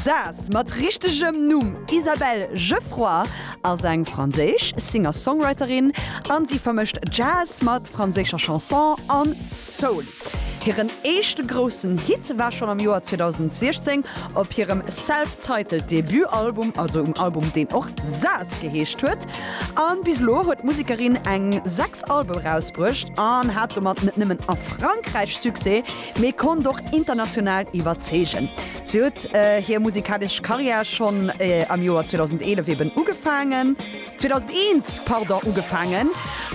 Saas, mat richtegem Numm Isabelle Geffroy, ass eng franséisch Singer-Songwriterin a si vermëscht Jazz mat franséischer Chanson an Soul. Hiren éischte groussen Hit war schonn am Joer 2016 op hirem self-titled Debutalbum, also um Album deen och Saas geheescht huet. A bis elo huet d'Musekerin eng 6 Alben erausbruecht an hat domat net nëmmen a Frankräich Succès, mee konnt och international iwwerzeegen. Si huet hir musikalesch Karriär schonn am Joer 2011 eben ugefaangen, 2001, pardon, ugefaangen,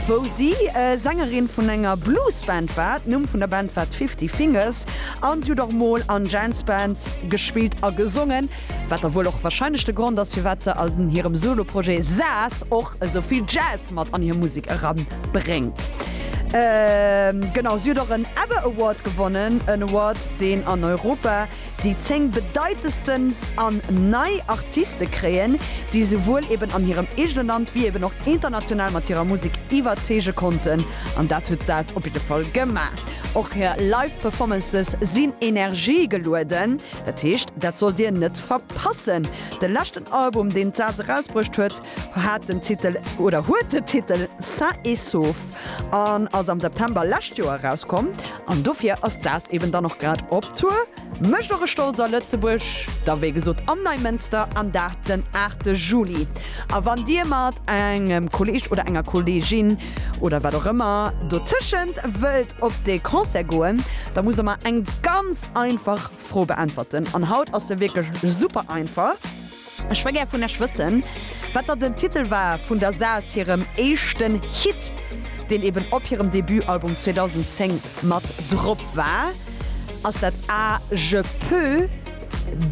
wou si Sängerin vun enger Bluesband war. D'Numm vun der Band war d'Fifty Fingers a si huet och mol an Jazzbands gespillt a gesongen, wat da wuel och warscheinlech de Grond ass, firwat se an hirem Soloprojet Saas och Esou vill Jazz mat an hir Musek eran bréngt. Genau, si huet och en Ebbe Award gewonnen, en Award deen an Europa déi 10 bedeitendsten an nei Artiste kréien, déi souwuel eben an hirem eegene Land wéi eben och international mat hirer Musek iwwerzeege konnten. An dat huet d'Saz op jidde Fall gemaach. Och hir Live Performances sinn Energie gelueden, dat heescht dat sollt dir net verpassen. De leschten Album, deen d'Saz erausbruecht huet, hat den Titel, oder huet den Titel Sain et Sauf an ass am September lescht Joer erauskomm. An dofir ass d'Saz eben dann och grad op Tour. Mécht och e stolz a Lëtzebuerg, da wéi gesot am Neimënster, an dat den 8 Juli. A wann Dir mat engem Kolleeg oder enger Kolleegin oder wat och ëmmer dotëschent wëllt op dee Concert goen, da muss Der mer eng ganz einfach Fro beäntwerten an haut ass se wierklech super einfach. Ech wëll gär vun lech wëssen, wat da den Titel war vun der Saas hirem éischten Hit, deen eben op hirem Debutalbum 2010 mat drop war. Ass dat A, Je peux,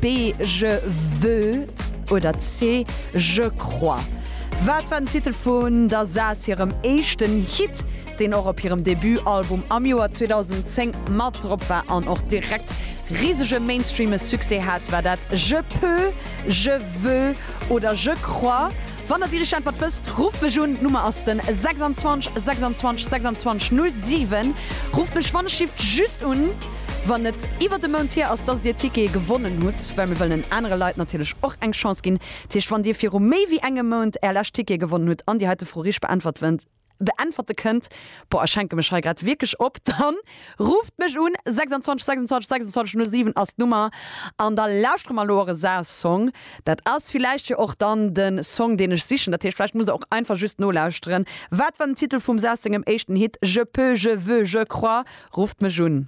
B, Je veux oder C, Je crois? Wat war den Titel vun der Saas hirem éischten Hit? deen och op hirem Debut-Album am Joer 2010 mat drop war an och direkt risege mainstreame Succès hat, war dat Je peux, Je veux oder Je crois? Wann der déi richteg Äntwert wësst, rufft mech un, d'Nummer ass den 26 26 26 07. Rufft mech wann ech schifft just un, wann et iwwert e Mount hier ass, dass dir Tickete gewonnen hutt, well mir wëllen anere Leit natierlech och eng Chance ginn. Dat heescht, wann dir viru méi wéi engem Mount är lescht Tickete gewonnen hutt an dir hei d'Fro richteg beäntwert wënnt, beäntwerte kënnt, boah ech hänke mech hei grad wierklech op, dann rufft mech un, 26 26 26 07 ass d'Nummer an da lauschtere mer elo och e Saas-Song. Dat ass villäicht jo och dann de Song deen ech sichen, dat heescht vläicht musst der och einfach just nolauschteren. Wat war den Titel vum Saas sengem éischten Hit Je peux, je veux, je crois? Rufft mech un.